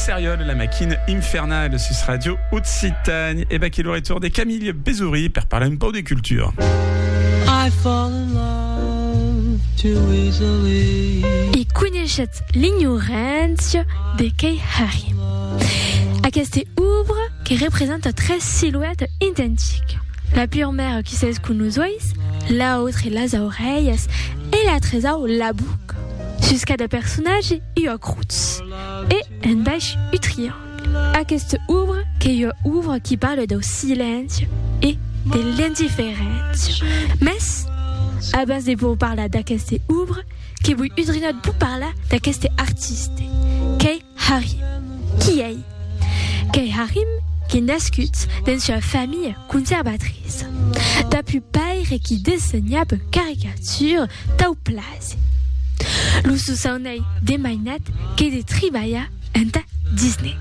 Seriol, la maquina infernale sus Radio Occitane. Et back le retour de Camille Bézoury pour parler un peu de culture. I fall in love too easily. E coneixetz l'ignorància de Kei Hari. Aquesta obra que representa tres silhouettes identiques. La pure mère qui sait ce que nous oïs, l'autre les oreilles et la trésor la boucle. Sus cada personatge ua crotz e en baish un triangle. Aquesta obra qu'ei ua obra qui parle dau silenci e de l'indiferéncia. Mès, abans de vos parlar d'aquesta obra, que voi udrinat, voi parlar d'aqueste artiste qu'ei Harry. Qui ei? Qu'ei Harry qu'ei nascut dens ua familha conservatriça. Dab un paire qui dessenhab caricatures tau plase. Lo sosaun ei de mainat qu'ei de tribalhar enta Disney.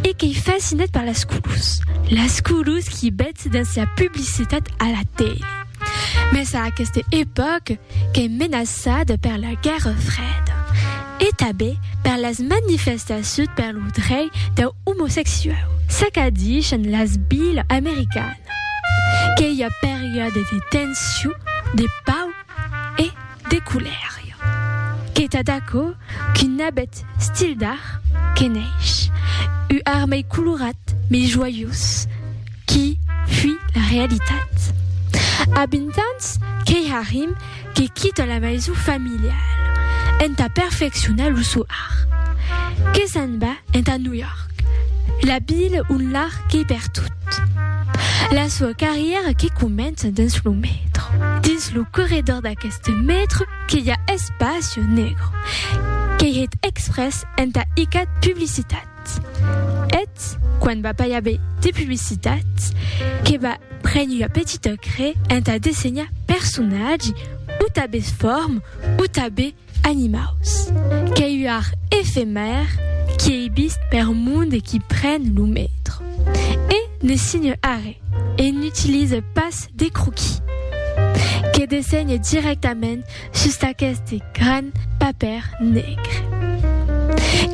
E qu'ei fascinat per las colors. Las colors qui bètz dens la publicitat a la tele. Mès a aquesta epòca, qu'es menaçada per la Guèrra Freda e tanben per las manifestacions per lo drei dau omosexuau. S'acadishan las vilas americanas que i a periòdes de tension, de pau e de colèria. Qu'es tad aquò qu'un abet stil d'art que neish, u ar mei colorat, mei joiós, Qui fui la realitat? A 20 ans, qu'ei Harim que quita la maison familiale entà perfeccionar lo sò art. Que s'en va entà New York, la vila ont l'art qu'ei pertot. La soa carrièra que comença dins lo metro. Dins lo corredor d'aqueste metro que i a Espacio Negro, qu'ei hèt exprès entà icat publicitat. Cat. Eth, quan va pair be de publicitat, que va prene ua petita cre entà dessenhar personatgi, o tabes form, o tabe animaus. Qu'ei ua art efemèr qui ei vist per monde e qui pren lo metro. E ne signe arre, e n'utilise pas de croquis. Que dessenhe directament Sus d'aqueste gran papèr negre.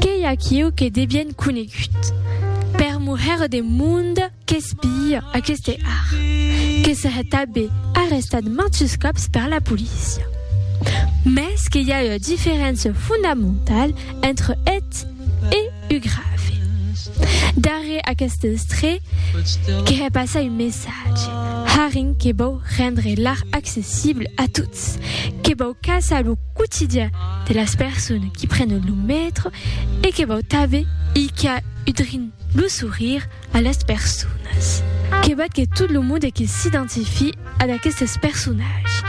Qu'ei aquiu que de bien conegut. Per muher de monde qu'espia aqueste art. Que se hè tabé arrestat manchus còps per la polícia. Mès que i a ua diferéncia fondamentala entre eth e. uu grave. Darrèr aqueste estre, que hè passar un messatge, Haring que vòu rendre l'art accessible a tots, que vòu caçar lo quotidian de las persones qui prenen lo metro e que vòu tanben i qu'a udrin lo sourire A las personas. Que val que tot lo monde que s'identifie a d'aquestes personatges,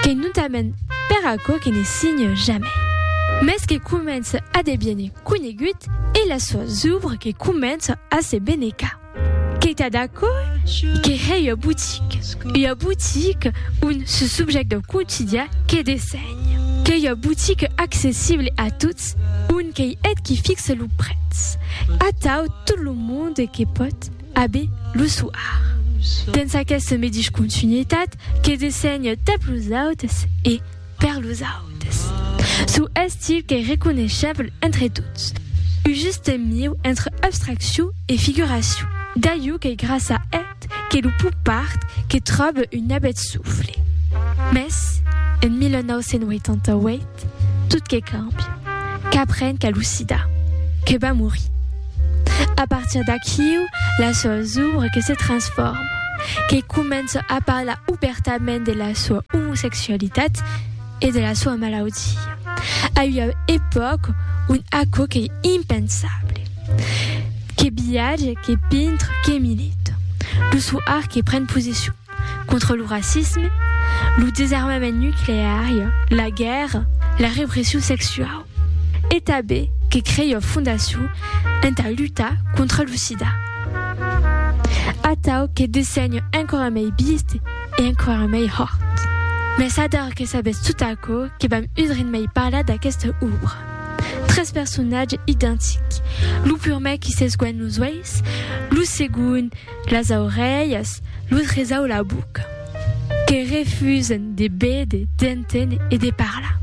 qu'ei notament per aquò que ne signe jamai, mès que comença a deviene conegut e las soas ouvres que comença a se benecar. Qu'ei tad aquò que hèi ua boutique, ua boutique ont ce subjècte quotidià que dessenh. Qu'ei ua botica accessible a tots, ont qu'ei eth qui fixe lo prètz. Atau tot lo monde que pòt, abe lo soar. Dens aquesta medish continuitat que dessenhe tap los autes e per los autes. Sou estil qu'ei reconeisheble entre tots, un juste mieu entre abstraccion e figuracion. D'aiu qu'ei gràcia a. Ait que lo popard que tròbe un abet sufle. Mès, en 1988, tot que càmbia. Qu'apren qu'a lo sida. Que va morir. A partir d'aquiu, la soa zubra que se transforma. Que comença a parlar obèrtament de la soa omosexualitat. e de la soa malaudia. A ua epòca ont aquò qu'ei impensable. Que viatge, que pintre, que milita. Lo sou art que pren posicion contra lo racisme, lo desarmament nucleari, la guèrra, la repression sexuau. E tanben que crei ua fondacion entà lutar contra lo sida. Atau que dessenho enquara mei bist e enquara mei hòrt. Mès ador que sabetz tot aquò que vam udrin mei parlar d'aquesta òbra. Tres personatges identics, lo purmèr qui s'esguènh los uèis, lo segond, Las aurelhas, lo tresau la boca. Que refusen de béder, d'enténer e de parlar.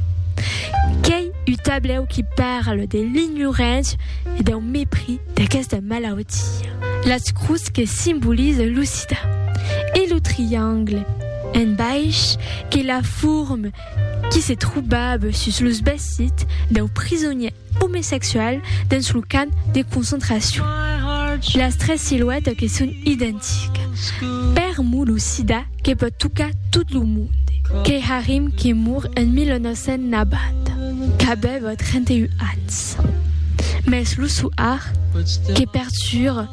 Qu'ei u tablèu qui parle de l'ignorància e dau mepris d'aquesta malautia. Las crus que simbolize lo sida. E lo triangle, en baish, qu'ei la forme. qui se trobava sus los vesits dau prisonièr omesexual dens lo camp de concentracion. Las tres siluètas que son identicas. Per mo lo sida que pòt tocar tot lo monde. Keharim que mor en 1990, qu'avèva 31 ans. Mès lo soar que pertura.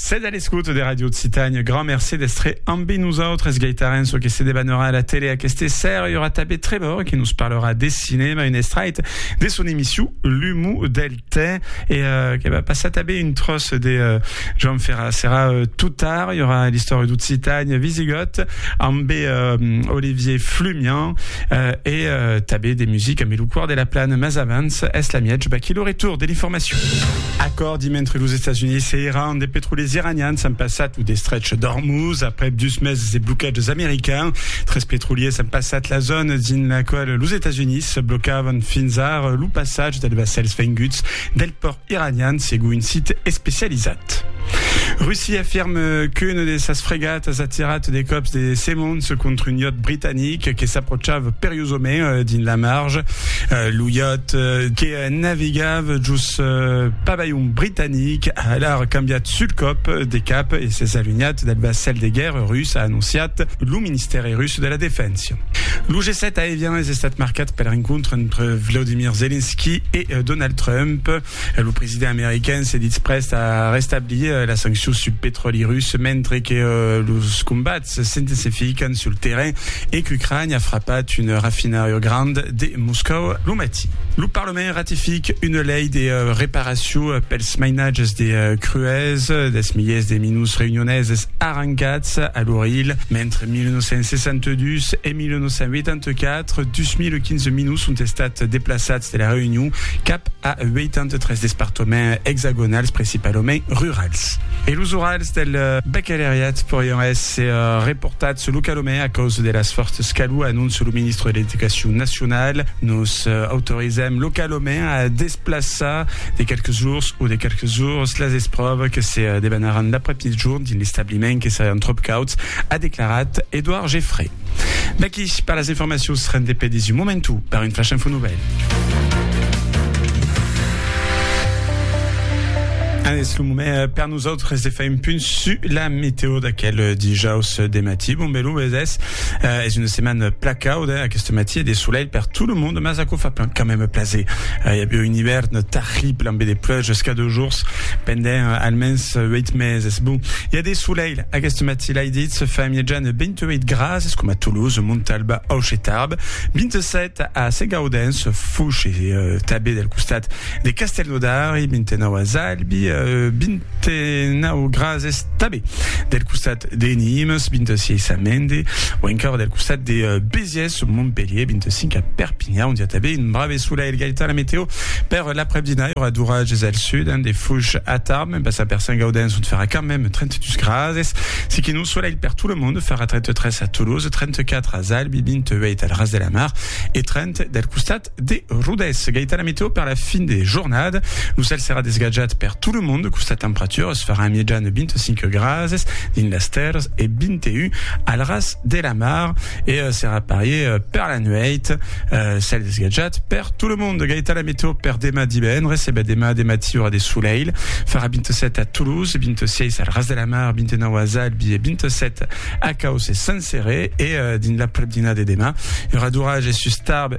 Sètz a l'escota de Ràdio Occitània. Grand mercé d'èstre ambe nosautres. Gaitarèn çò que se debanorà a la tele aqueste sèra. I aurà tanben Trevor que nos parlarà de cinèma, un estrait de son emission L'humo del tè. E que va passar tanben un tròç de Joan Ferrà. Serà tot tard. I aurà l'istòria d'Occitània visigòt ambe Olivier Flumian e tanben de musica ambe lo Còr de la Plana. Mas avans, es l'amiatge baquí lo retorn de l'informacion. Dimentre los Estats Units e Iran, de petroliers iranians an passat lo destrech d'Ormuz aprèp dus meses de blocatges americans. Tres petroliers an passat la zòna dins la quala los Estats Units blocavan fins ara lo passatge dels vassèls venguts del pòrt iranian, segon un sit especializat. Russia afirma qu'una de sas fregatas a tirat de còps de semons contra un iòt britanic que s'apròchava periosament dins la marge. Lo iòt, que Navegava jos pabalhon britanic, a alar cambiat sul còp de cap e s'es alunhat del vassèl de guèrra rus, a anonciat lo Ministèri rus de la Defensa. Lo G7 a Evian es estat marcat per l'encontre entre Vladimir Zelensky e Donald Trump. Lo president american se ditz prèst a restablir las sanccions sul petròli rus, mentre que los combats s'intensifican sul terrain e qu'Ucraina a frapat un rafinariu grand de Moscòu lo matí. Lo Parlament ratific una lei de reparacion pels mainatges de crues dels milhers de minus reunioneses arrancats a l'Ouril mentre 1962 e 1984, 2.015 minus son estats deplaçats de la Reünion cap a 83 despartaments exagonals principalament rurals. E los Urals? Del baccaleriat porián èsser reportats sul Calomè a causa de las fòrtas calor, anóncia lo ministre de l'Educacion nacionala. Nos autorizam lo Calomè a desplaçar de qualques jours o de qualques ores las espròvas que se debanaràn l'après-mitjorn dins l'establiment que serián tròp cauds, a declarat Edouard Geffray. Vaqui per las informacions rendepedis un momentu per un flash info novèl. Nosautres de fai un punt su la meteo d'aquel dijaus de matí. Bon belu es es. Es una setmana pla cauda aquest matí e de solelh per tot lo monde, mas aquò fa plan quand même plaser. I aviá un ivèrn tarrible ambe de pluges ca dos jours pendent almens 8 meses. Bon, i a de solelh aquest matí, l'ai ditz, fa mièjan 28 grads, es coma Toulouse, Montalba, Auch e Tarbes, 27 a Segaudens, Fouche e tanben del costat De Castelnaudari, 29 a Zalbi, 29 gras es tabé del costat de Nimes, 26 a Mende, o encara del costat de Béziers, Montpellier, 25 a Perpignan, on dia tabé un brave solelh. Gaita la meteo per l'après-dina, i aurà d'oratges al sud, de fuch a tard, mem pas a Persain-Gaudens, ont farà quand mem 32 gras es. Siquin un solelh per tot le monde, farà 33 a Toulouse, 34 a Zalbi, 28 al ras de la mar e 30 del costat De Rodés, Gaitana Meteo per la fin de jornada, lo cèl serà desgatjat per tot lo mond, costat temperaturas farà en mijan 25 grases dins las tèrras e 21 al ras de la mar e serà parier per la nuèit, cèl desgatjat per tot lo mond. Gaitana Meteo per demà divendres, e ben demà de matí aurà de solelh, farà 27 a Toulouse, 26 al ras de la mar, 29 as Albis e 27 a Causse Senserè e dins l'aprepdina de demà i aurà d'orages sus Tarbes,